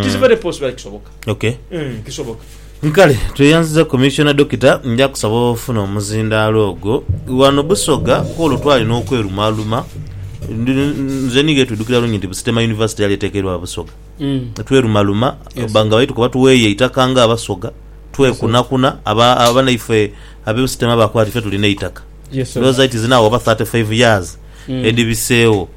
Tis very possible aye kisoboka. Okay. Eeh kisoboka. Nkale tweyanziza Commissioner Dokita nja kusaba ofune omuzindaalo ogwo. Wano Busoga kwolwo twalina okwerumaaluma nze ni Gertrude dukira bulungi nti Busitema University yali etekeirwa Busoga. Twerumaluma ba nga baitu kuba tuweeyo eitaka nga Abasoga twekunakuna aba abanaifwe abe Busitema bakoba nti ife tulina eitaka. Ndhooza iti zina agho oba thirty five years edhibiseegho.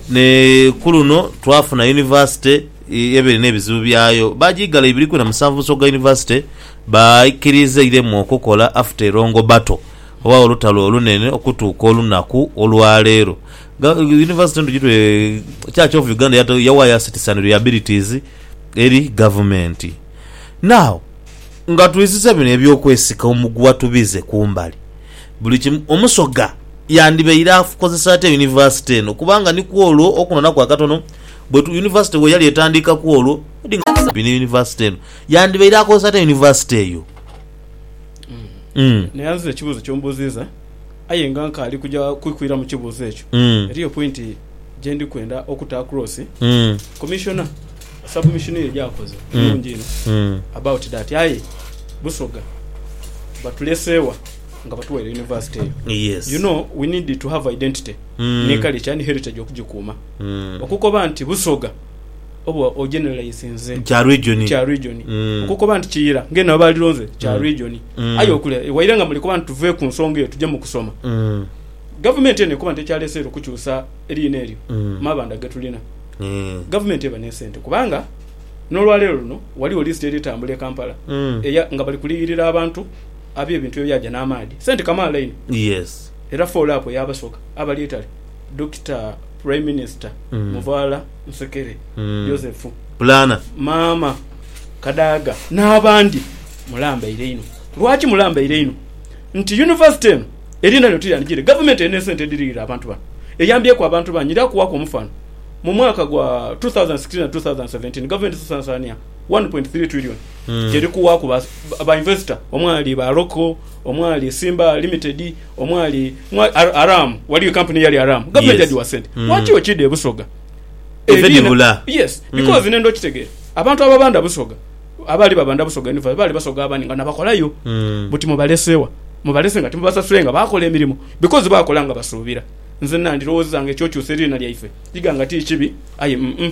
Ni ku luno twafuna yunivasite eba erina ebizibu byayo. Baagiigala ibiri kwina musanvu mu nsooka gha yunivasite baaikiriiza eiremu okukola after a long battle oba olutalo olunene okutuuka olunaku olwa leero. Ga, yunivasite endhugi twe, Church of Uganda yata, yawaayo assets and liabilities eri gavumenti. Now. Nga twizizza bino eby'okwesika omuguwa tubize ku mbali buli kimu, Omusoga yandibaire akozesa atya yunivasite eno kubanga ni ku olwo okunoonaku akatono bwe tu yunivasite bwe yali etandiika ku olwo edi nga tukola bino yunivasite eno yandibaire akozesa atya yunivasite eyo? Umm. Naye nze ekibuuzo ky'ombuuzizza aye nga nkaali kuja kwikwira mu kibuuzo ekyo, Umm. eriyo pointi gye ndi kwenda okuta across, Umm. Commissioner. Submission ye gyakoze nungi inho about that aye busoga batulesewa nga batuwaire university eyo you know we need to have identity ni culture ni heritage okugikuuma okukoba nti busoga oba o generalizinze Kya region. kya region okukoba nti kiyira nga eno abalironze kya region aye okule waire nga mulikoba nti tuve ku nsonga eyo tuje mu kusoma gavumenti eno ekoba nti ekyaleseere okukyusa eriina eryo mabanda getulina Gavumenti eba n'esente kubanga n'olwaleero luno ghaligho lisiti eri tambula e Kampala eya nga bali kuliyirira abantu ab'ebintu ebyaja n'amaadhi. Sente kamaala inho era foolo apo y'abasoga abali eitale Dokita Prime Minister Muvaala Nsekere Joseph, Maama Kadaga n'abandi. Mulambaire inho. Lwaki mulambaire inho? Nti yunivasite eno. Eriina lino tiryandigiire. Gavumenti erina esente edhiriirira abantu bano. Eyambyeku abantu bangi. Ndha kuwaaku omufaano. Mu mwaka gwa two thousand and sixteen na two thousand and seventeen, gavumenti esasaania one point three trillion gyeri kuwaaku ba ba investor omwali ba Roko, omwali Simba Limited, omwali mwa Ar- Aram, waliyo ekampuni eyali Aram. Gavumenti Yes. yagigha sente. Mm. Lwaki okiidha e Busoga? Eve Eriina- dhibula. Yes, because nenda okitegeera. Abantu ababanda Busoga, abaali babanda busoga enivayo baali basoga abandi nga nabakolayo mm. buti mubalesewa mubalese nga timubasasule nga bakola emirimu because bakola nga basuubira nze nandirowoozeza nga ekyokyusa eriina lyaife iga nga ti kibi aye mm, mm.